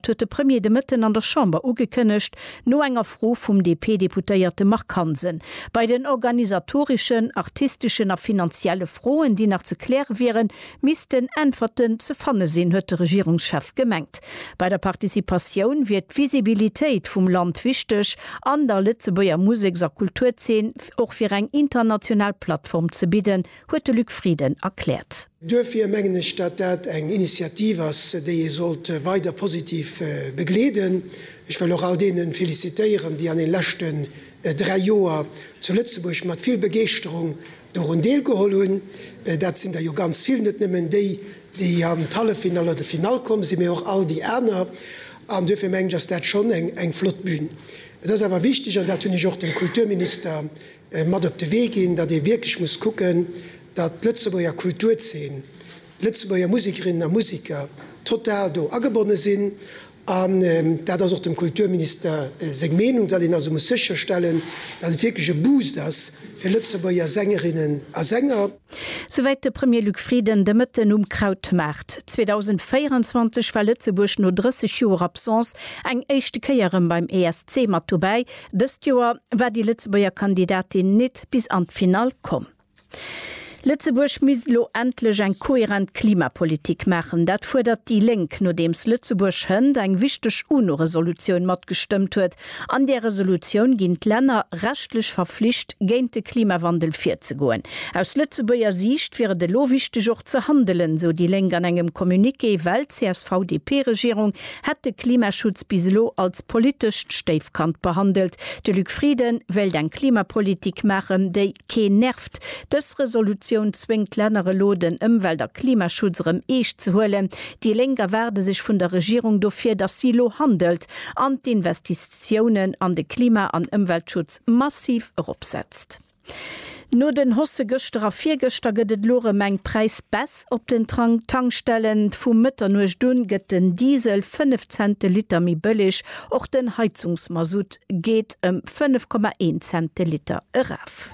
Dat huet de Premier de Mëtten an der Chamber ugekënnegt, no enger Fro vum DP-Deputéierte Marc Hansen. Bei den organisatoreschen, artisteschen a finanzielle Froen, déi nach ze kläre wieren, missten Äntwerten ze fanne sinn, huet de Regierungschef gemengt. Bei der Participatioun wier d'Visibilitéit vum Land wichteg an der Lëtzebuerger Museks a Kulturzeen och fir eng international Plattform ze bidden, huet de Luc Frieden erkläert. Duerfir mengen ech, datt dat eng Initiativ ass, déi ee sollt weider positiv begleeden. Ech wëll och all deene félicitéieren, déi an den leschten dräi Joer zu Lëtzebuerg mat vill Begeeschterung dorun deelgeholl hunn. Dat sinn der jo ganz vill, net nëmmen déi, déi an d'Halleffinall oder d'Finall komm sinn, mee och all déi aner. An duerfir mengen ech, ass dat schonn eng flott Bühn. Et ass awer wichteg, an dat hunn ech och dem Kulturminister mat op de Wee ginn, datt ee wierklech muss kucken, datt d'Lëtzebuerger Kulturzeen, d'Lëtzebuerger Musikerinnen a Musiker total do agebonne sinn. An dat ass och dem Kulturminister seng Meenung, datt een also muss sécherstellen, datt et wierklech e Boost ass fir Lëtzebuerger Sängerinnen a Sänger. Souwäit de Premier Luc Frieden de Mëtten um Krautmaart. 2024 war Lëtzebuerg no 30 Joer Absence eng éischte Kéier erëm beim ESC mat dobäi. Dëst Joer war déi Lëtzebuerger Kandidatin nit bis an d'Finall komm. Lëtzebuerg misst elo endlech eng kohärent Klimapolitik maachen. Dat fuerdert déi Lénk, nodeems Lëtzebuerg hënt eng wichteg UNO-Resolutioun matgestëmmt huet, An där Resolutioun ginn d'Länner rechtlech verflicht, géint de Klimawandel virzegoen. Aus Lëtzebuerger Siicht wier et elo wichteg och ze handelen, esou déi Lénk an engem Communiqué, well d'CSV-DP-Regierung hätt de Klimaschutz bis elo als politescht Stéifkand behandelt. De Luc Frieden wéilt eng Klimapolitik maachen, déi keen nervt. Dës Resolutioun zwéngt d'Länner elo, den Ëmwelt a Klimaschutz erëm eescht ze huelen. Déi Lénk erwaarde sech vun der Regierung dofir, datt si elo handelt. an d'Investitiounen an de Klima an Ëmweltschutz massiv eropsetzt. No den Hausse gëschter a virgëschter gëtt et elo erëm eng Präisbaisse op den Tankstellen. Vu Mëtternuecht u gëtt den Diesel 5 Cent de Liter méi bëlleg, och den Heizungsmasutt geet ëm 5,1 Cent de Liter eraf.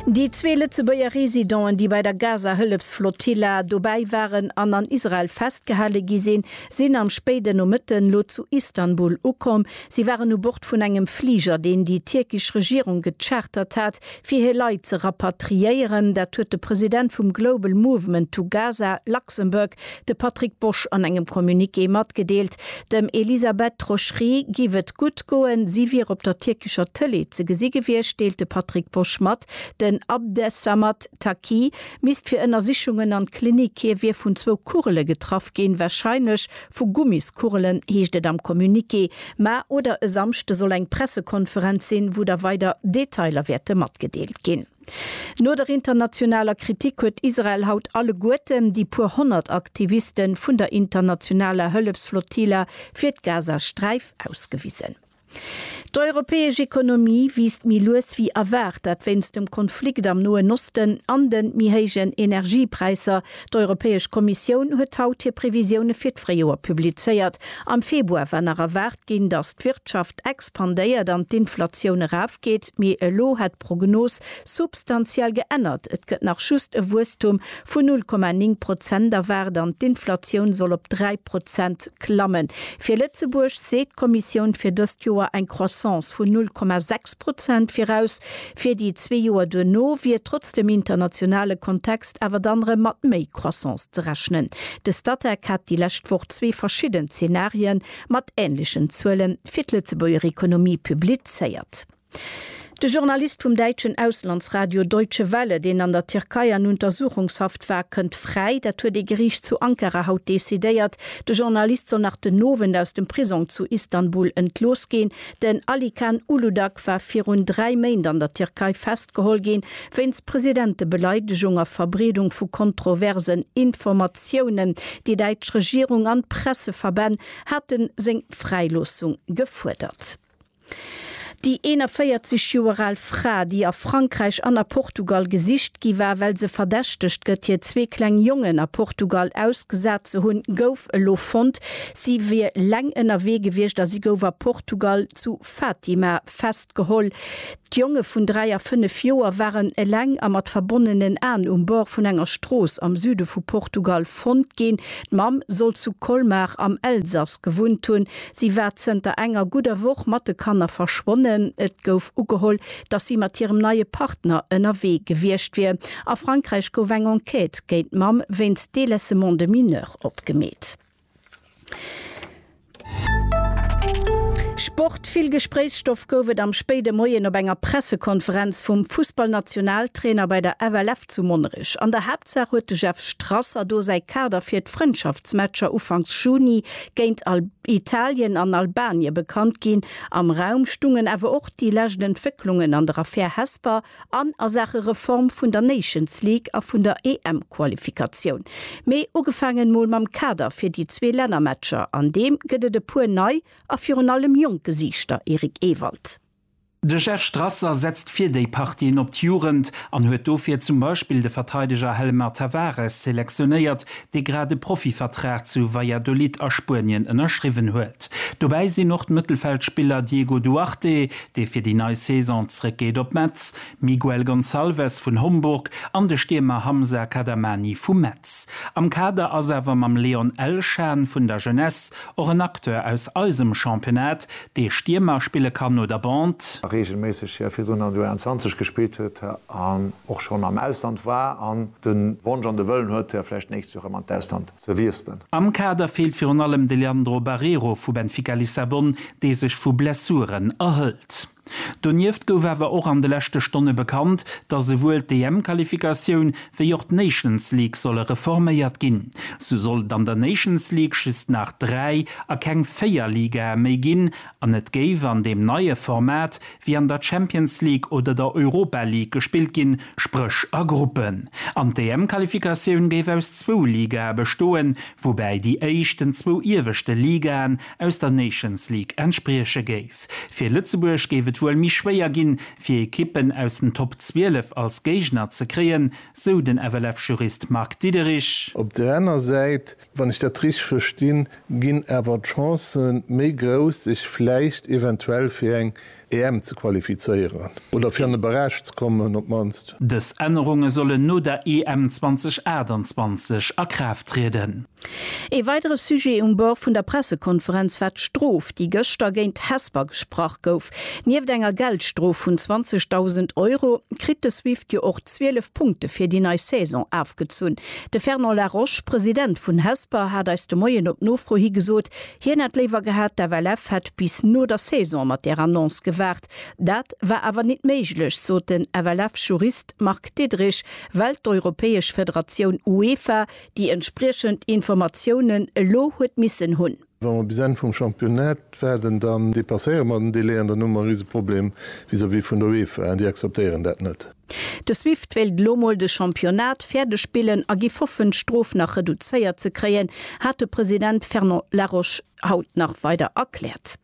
Déi zwee Lëtzebuerger Residenten, déi bei der Gaza-Hëllefsflotilla dobäi waren an an Israel festgehale gi sinn, sinn am spéiden Nomëtten lo zu Istanbul ukomm. Si waren u Bord vun engem Fliger, deen déi tierkesch Regierung gechartert hat, fir hir Leit ze rapatriéieren. Dat huet de President vum Global Movement to Gaza Luxembourg, de Patrick Bosch, an engem Communiqué matgedeelt. Dem Elisabeth Troschry giff et gutt goen, si wier op der tierkescher Tëlee ze gesi gewiescht, deelt de Patrick Bosch mat. Den Abdessamad Taqi Misst fir Ënnersichungen an d'Klinik. Hie wier vun zwou Kugele getraff ginn, warscheinlech vu Gummiskugelen, heescht et am Communiqué. Mä oder e Samschde soll eng Pressekonferenz sinn, wou da weider Detailer wäerte matgedeelt ginn. No der internationaler Kritik huet Israel haut alleguerten déi puer honnert Aktiviste vun der internationaler Hëllefsflottille fir d'Gazasträif ausgewisen. D'europäesch Ekonomie wiisst méi lues wéi erwaart, dat wéinst dem Konflikt am Noen Osten an de méi héijen Energiepräisser. D'Europäesch Kommissioun huet haut hir Previsioune fir d'Fréijoer publizéiert. Am Februar war nach erwaart ginn, datt d'Wirtschaft expandéiert an d'Inflatioun erafgeet, mee elo hätt d'Prognos substantiell geännert, et gëtt nach just e Wuesstum vun 0,9 Prozent erwaart an d'Inflatioun soll op 3 Prozent klammen. Fir Lëtzebuerg seet d'Kommissioun fir dëst Joer eng Croissance vun 0,6 Prozent viraus. Fir déi zwee Joer duerno wier trotz dem internationale Kontext awer dann erëm mat méi Croissance ze rechnen. De Statec hat déi lescht Woch zwee verschidden Zenarië mat änlechen Zuele fir d'Lëtzebuerger Economie publizéiert. De Journalist vum däitschen Auslandsradio Deutsche Welle, deen an der Tierkei an Untersuchungshaft war, kënnt fräi. Dat huet ee Geriicht zu Ankara haut decidéiert. De Journalist soll nach den Owend aus dem Prisong zu Istanbul entlooss ginn. Den Alican Uludag war virun dräi Méint an der Tierkei festgeholl ginn, wéinst Presidentebeleidegung a Verbreedung vu kontroversen Informatiounen. Déi däitsch Regierung an d'Presseverbänn hate seng Fräiloossung gefuerdert. Déi 41 Joer al Fra, déi a Frankräich an a Portugal gesicht gi war, well se verdächtegt gëtt, hir zwee kleng Jongen a Portugal ausgesat ze hunn, gouf elo fonnt. Si wier leng ënnerwee gewiescht a si gouf a Portugal zu Fatima festgeholl. D'Jonge vun 3 a 5 Joer waren eleng a mat verbonnenen Aen um Bord vun enger Strooss am Süde vu Portugal fonnt ginn. D'Mamm soll zu Colmar am Elsass gewunnt hunn. Si war zënter enger gudder Woch mat de Kanner verschwonnen. Et gouf ugeholl, datt si mat hirem neie Partner ënnerwee gewiescht wier. A Frankräich gouf eng Enquête géint d'Mamm wéinst Délaissement de mineur opgemeet. Sport Vill Gespréichsstoff gouf et am spéide Moien op enger Pressekonferenz vum Fussballnationaltrainer bei der FLF zu Monnerech. An der Haaptsaach huet de Jeff Strasser do säi Kader fir d'Frëndschaftsmatcher ufanks Juni géint Italien an Albanie bekannt ginn. Am Raum stungen awer och déi lescht Entwécklungen an der Affär Hesper. an a Saache Reform vun der Nations League a vun der EM-Qualifikatioun. Mee ugefaangen mol mam Kader fir déi zwee Lännermatcher, an deem gëtt et e puer nei a virun allem jonk Gesiichter, Eric Ewald. De Jeff Strasser setzt fir déi Partien op d'Jugend an huet dofir zum Beispill de Verteideger Hellemar Tavares selektionéiert, dee grad e Profivertrag zu Valladolid a Spuenien ënnerschriwwen huet. Dobäi sinn och d'Mëttelfeldspiller Diego Duarte, dee fir déi nei Saison zréckgeet op Metz, Miguel Gonçalves vun Homburg an de Stiermer Hamza Kadamani vu Metz. Am Kader ass awer mam Leon Elshan vun der Jeunesse och en Acteur aus eisem Championnat, dee Stiermer spille kann oder Bande. reegelméisseg hir virdrun an der U21 gespillt huet an och schonn am Ausland war an de Wonsch an de Wëllen huet, hir vläicht nächst Joer erëm an d'Ausland ze wiesselen. Am Kader feelt virun allem de Leandro Barreiro vu Benfica Lissabon, dee sech vu Blessuren erhëlt. Donieft gouf awer och an de leschte Stonne bekannt, datt esouwuel d'EM-Qualifikatioun wéi och d'Nations League solle reforméiert ginn. Sou soll et an der Nations League just nach dräi a keng véier Ligae méi ginn an et géif an deem neie Format wéi an der Champions League oder der Europa League gespillt ginn, spréch a Gruppen. An d'EM-Qualifikatioun géif aus zwou Ligae bestoen, woubäi déi éischten zwou ieweschte Ligaen aus der Nations League entsprieche géif. Fir Lëtzebuerg géif et wuel méi schwéier ginn, fir Ekippen aus den Top 12 als Géigner ze kréien, sou den FLF-Jurist Marc Diederich. Op der aner Säit Wann ech dat richteg verstinn, ginn awer d'Chancë méi grouss, sech vläicht eventuell fir eng EM ze qualifizéieren oder fir an de Barrage ze kommen op d'mannst. Dës Ännerunge sollen no der EM 2028 a Kraaft trieden. Ee weidere Sujet um Bord vun der Pressekonferenz war d'Strof, déi gëschter géint Hesper gesprach gouf. Nieft enger Geldstrof vun 20.000 Euro kritt de Swift jo och 12 Punkte fir déi nei Saison afgezunn. De Fernand Laroche, President vun Hesper, hat eis de Moien op Nofro hi gesot, hien hätt léiwer gehat, d'FLF hätt bis no der Saison mat där Annonce gewaart. Dat war awer nit méiglech, sot den FLF-Jurist Marc Diederich, well d'europäesch Federatioun UEFA déi entspriechend Informatiounen elo huet missen hunn. Wa mer bis Enn vum Championnat waarden, dann dépasséiere mer den Délai an dann hu mer e Riseproblem vis-à-vis vun der UEFA. Déi akzeptéieren dat net. De Swift wéilt elo mol de Championnat fäerdeg spillen a giff hoffen, d'Strof nach reduzéiert ze kréien, hat de President Fernand Laroche haut nach weider erkläert.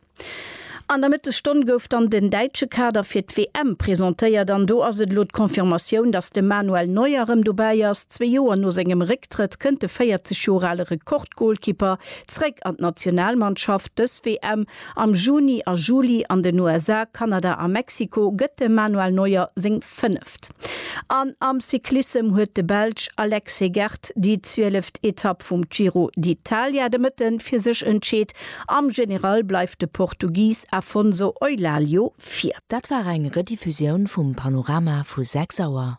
An der Mëttesstonn gouf dann den däitsche Kader fir d'WM presentéiert an do ass et elo d'Confirmatioun, dass de Manuel Neuer erëm dobäi ass. Zwee Joer no sengem Récktrëtt kënnt de 40 Joer ale Rekordgolkipper zeréck an d'Nationalmannschaft. Dës WM am Juni a Juli an den USA, Kanada a Mexiko gëtt dem Manuel Neuer seng 5. Etapp. An am Cyclissem huet de Belsch Alex Hegert déi zwieleft Etapp vum Giro d'Italia de Mëtte fir sech entscheet. Am General bleift de Portugis Afonso Eulaglio vir. Dat war eng Rediffusioun vum Panorama vu 6 Auer.